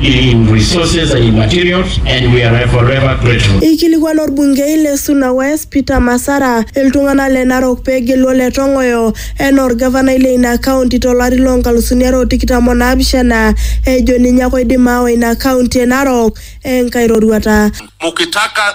in resources and in materials, and we are forever grateful. Eikilikuana olbungei le Suna West Peter Masara iltung'ana le Narok pee egelu Ole Tong'oyo enaa olgavanai le ina kaunti to lari loo nkalusuni are o tikitam o naapishana ejo ninye ake oidim aawa ina kaunti e Narok enkae roruata. Mukitaka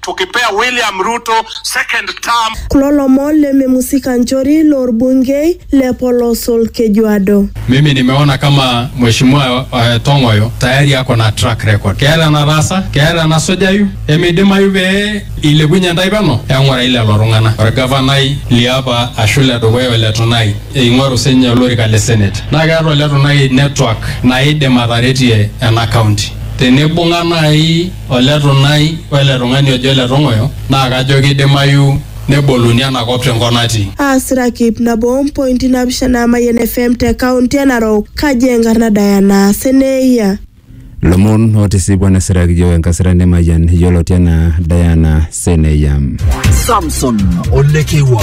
tukipea William Ruto second term. Kulo lomon le Memusi Kanchori lo Bunge le Polos Olkejuado. Mimi nimeona kama mheshimiwa uh, Tong'oyo tayari ako na track record. Keeta enataasa, keeta enasujayu, emeidimayu pee ilepunye ntae peno eng'urai lelo tung'anak. Orgavanai liapa ashu le dukuya ole Tunai eing'oru sinye olorika le Senate. Naa keeta ole Tunai network naidim ataretie ena county. Tenibung'a nai Ole Tunai o ele tung'ani ojo Ole Tong'oyo naa kajo keidimayu neboluni ena kop te nkop natii. Aasiraki ip nabo o mpointi naapishana Mayian FM te kaunti e Narok, kaji enkarna Diana Seneia. Lomon otisipua nesiraki yiok enkasirani e Mayian yioloti anaa Diana Seneia. Samson Olekewa.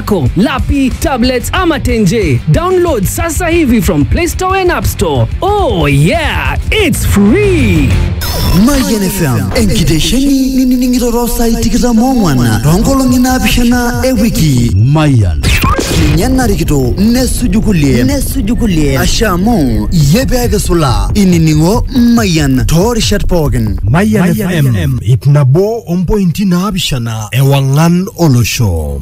yako, lapi, tablets ama tenje. Download sasa hivi from Play Store and App Store. Oh yeah, it's free. Mayian FM enkitesheni ninining'ito too saai tikitam oong'wan toonkolong'i naapishana e wiki. Mayian ninye narikito nesuju kulie nesuju kulie asha amu iyie pee kisulaa inining'o Mayian toorishat pookin. Mayian FM ip nabo ompointi naapishana ewang'an olosho.